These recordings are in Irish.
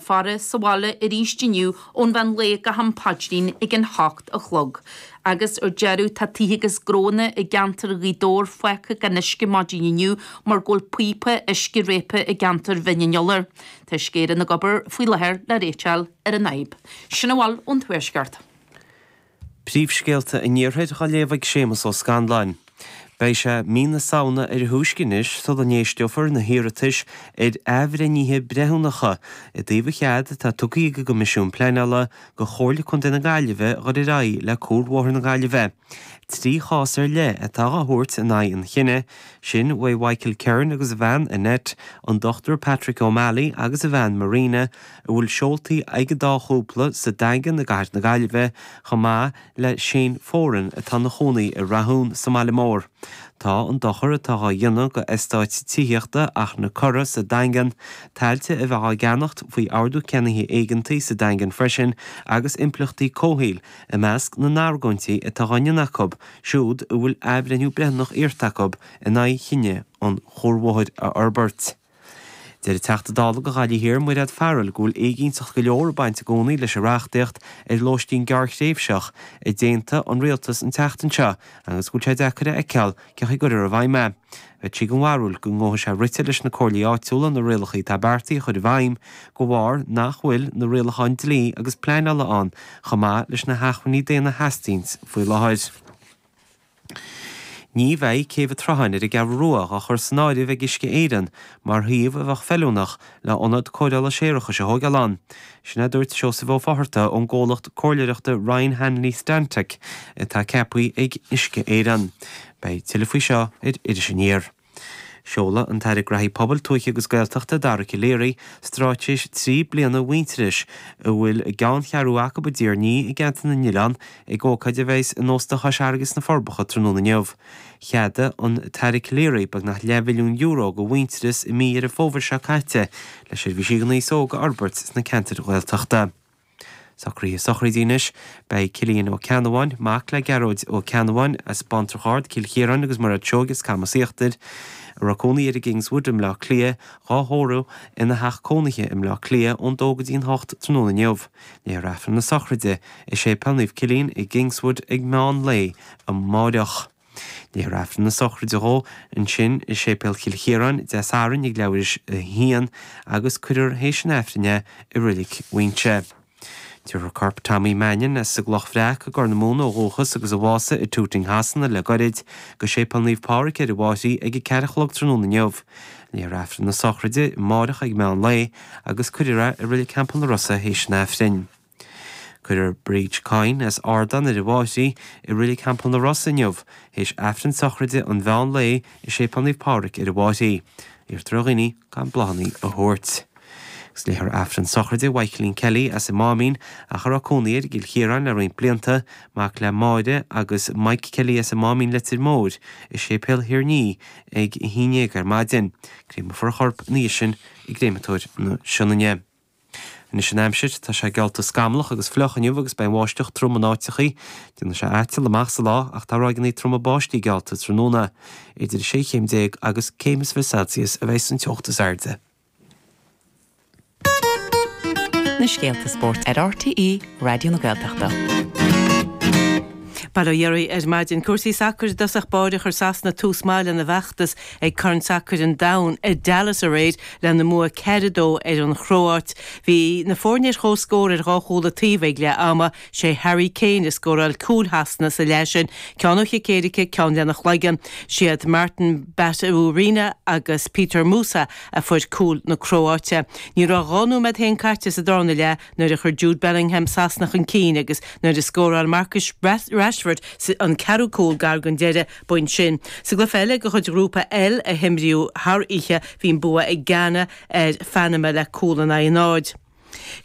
faire sa bhaile arís inniu ón mheán lae go ham paidrín ag an hocht a chlog. Agus ar deireadh, tá tithe agus gnóanna i gceantar Ghaoth Dobhair fágtha gan uisce maidin inniu mar go bhfuil píopa uisce réabtha i gceantar Bhinn an Iolair. Tá scuaideanna ag obair faoi láthair le réiteach a fháil ar an fhadhb. Sin a bhfuil ón Tuaisceart. Príomhscéalta an Iarthair dá léamh ag Séamas Ó Scanláin. Beidh sé mí na Samhna ar a thúisce anois sula n-éisteofar na hiarratais ar athbhreithnithe breithiúnacha i dtaobh an chead atá tugtha ag an gCoimisiún Pleanála go Chomhairle Contae na Gaillimhe a ghoil ar aghaidh le Cuarbhóthar na Gaillimhe trí chás ar leith atá á thabhairt in aghaidh an chinnidh sin uaidh Michael Kerin agus a bhean Annette, an Dr Patrick O'Malley agus a bhean Marina, a bhfuil seoltaí ag an dá chúpla sa Daingean i gcathair na Gaillimhe, chomh maith le Shane Foran atá ina chónaí i Rathún sa mbaile mór. Tá an dochar atá á dhéanamh go eastáit tithíochta Ach na Coradh sa Daingean, tailte a bheadh á gceannacht faoi Ordú Ceannaithe Éigeantaigh sa Daingean freisin agus impleachtaí comhshaoil i measc na n-argóintí atá á ndéanamh acu siúd a bhfuil athbhreithniú breithiúnach iarrta acu in aghaidh chinneadh an chuarbhóthair a fhorbairt. Deir an Teachta Dála do Ghaillimh Thiar Mairéad Farrell go bhfuil éiginnteacht go leor ag baint i gcónaí leis an reachtaíocht ar lóistín gearrthréimhseach a d'aontaigh an Rialtas an tseachtain seo agus go bhfuil sé deacair a fheiceáil cén chaoi a gcuirfear i bhfeidhm é. Bheadh sí den bharúil go ngeobhadh sé rite leis na Comhairlí Áitiúla na rialacha atá beartaithe a chur i bhfeidhm de bharr nach bhfuil na rialacháin dlí agus pleanála ann chomh maith leis na hacmhainní daonna a theastaíonn faoi láthair. Ní bheidh Céibh an tSrutháin ar an gCeathrú Rua á chur san áireamh ag Uisce Éireann mar shuíomh a bheadh feiliúnach le hionad cóireála séarachais a thógáil ann. Sin a dúirt Seosamh Ó Fotharta ón gcomhlacht comhairleireachta Ryan Hanley Stantec atá ceaptha ag Uisce Éireann. Beidh tuilleadh faoi seo ar Iris Aniar. Seolfaidh an tAire Gnaithí Pobail, Tuaithe agus Gaeltachta, Dara Calleary, stráitéis trí bliana Mhuintearais, a bhfuil a gceanncheathrú acu i dTír an Fhia i gceantar na nOileán, ag ócáid a bheas in Ósta Chois Fharraige sna Forbacha tráthnóna inniu. Cheadaigh an tAire Calleary beagnach leathmhilliún euro go Mhuintearas i mí Dheireadh Fómhair seo caite le seirbhísí d'aos óg a fhorbairt sna ceantair Ghaeltachta. Socraithe sochraide anois. Beidh Cillian Ó Ceannabháin, mac le Gearóid Ó Ceannabháin, as Bántrach Ard, Cill Chiaráin agus Mairéad Seoighe as Camas Íochtair, a raibh cónaí air i gKingswood i mBleá Cliath, dhá thórramh ina theach cónaithe i mBleá Cliath ón dó go dtí an hocht tráthnóna inniu. Léifear Aifreann na sochraide i Séipéal Naomh Cillian i gKingswood ag meán lae amáireach. Léifear aifreann na sochraide dhó ansin i Séipéal Chill Chiaráin Dé Sathairn ag leathuair théis a haon agus cuirfear théis an aifrinne i roilic Mhaínse. Tabharfar corp Tommy Mannion as a gCloch Bhreac i gCorr na Móna ó dhúchas agus a bhásaigh i Tooting Shasana le goirid go Séipéal Naomh Pádhraic ar an bhFairche ag a ceathair a chlog tráthnóna inniu. Léifear aifreann na sochraide amárach ag meán lae agus cuirfear é i roilic Theampall an Rosa théis an aifrinn. Cuirfear Bridgie Kyne as Ardán ar an bhFairche i Reilig Theampall an Rosa inniu, théis Aifreann sochraide an mheán lae i Séipéal Naomh Pádraig ar an bhFairche. Iarrtar ar dhaoine gan bláthanna a thabhairt. Is léifear Aifreann sochraide Mhaidhcilín Kelly as an Máimín, ach a raibh cónaí air i gCill Chiaráin le roinnt blianta, mac le Máire agus Mike Kelly as an Máimín Leitir Móir, i Séipéal Thír an Fhia ag a haon dhéag ar maidin. Créamfar a chorp ina dhiaidh sin i gCréamatóir na Sionainne. Anois an aimsir, tá sé geallta scamallach agus fliuch inniu agus beidh an bháisteach trom in áiteachaí. Déanfaidh sé aiteall amach sa lá ach tá ráigeanna troma báistí geallta tráthnóna. Idir 16 chéim agus céim is fiche Celsius a bheidh an teocht is airde. Na scéalta spóirt ar RTÉ Raidió na Gaeltachta. Bail ó Dhia oraibh ar maidin cúrsaí sacair i dtosach báire chuir Sasana tús maith lena bhfeachtas Ag Corn Sacair an Domhain i Dallas aréir, lena mbua ceithre, a dó ar an Chróáit. Bhí na foirne ar chomhscór ar dhá chúl a taobh ag leath ama. Sé Harry Kane a scóráil cúil Shasana sa leath sin, ceann ó chic éirice, ceann lena chloigeann. Siad Martin Baturina agus Petar Musa a fuair cúil na Cróáite. Ní raibh dhá nóiméad féin caite sa darna leath nuair a chuir Jude Bellingham Sasana chun cinn agus nuair a scóráil Marcus Rashford an ceathrú cúl gar don deireadh, bpointe sin. Sa gcluiche eile de chuid Ghrúpa L a himríodh thar oíche, bhí an bua ag Ghana ar Phanama le cúl in aghaidh an náid.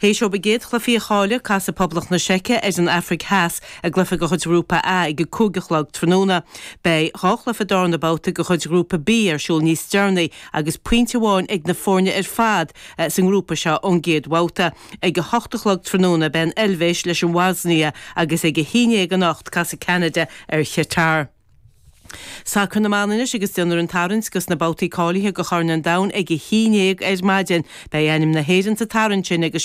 Théis dóibh a gcéad chluiche a chailleadh, casfaidh Poblacht na Seice ar an Afraic Theas i gcluiche de chuid Ghrúpa A ag a cúig a chlog tráthnóna. Beidh dhá chluiche darna babhta de chuid Ghrúpa B ar siúl níos deireanaí agus pointe amháin ag na foirne ar fad sa ngrúpa seo ón gcéad bhabhta. Ag a hocht a chlog tráthnóna buailfidh an Eilvéis leis an mBoisnia agus ag a haon dhéag anocht casfaidh Ceanada ar Chatar. Sacar na mban anois agus déanfar an tarraingt do na babhtaí cáilithe do Chorn an Domhain ag a haon dhéag ar maidin. Beidh ainm na hÉireann sa tarraingt sin agus.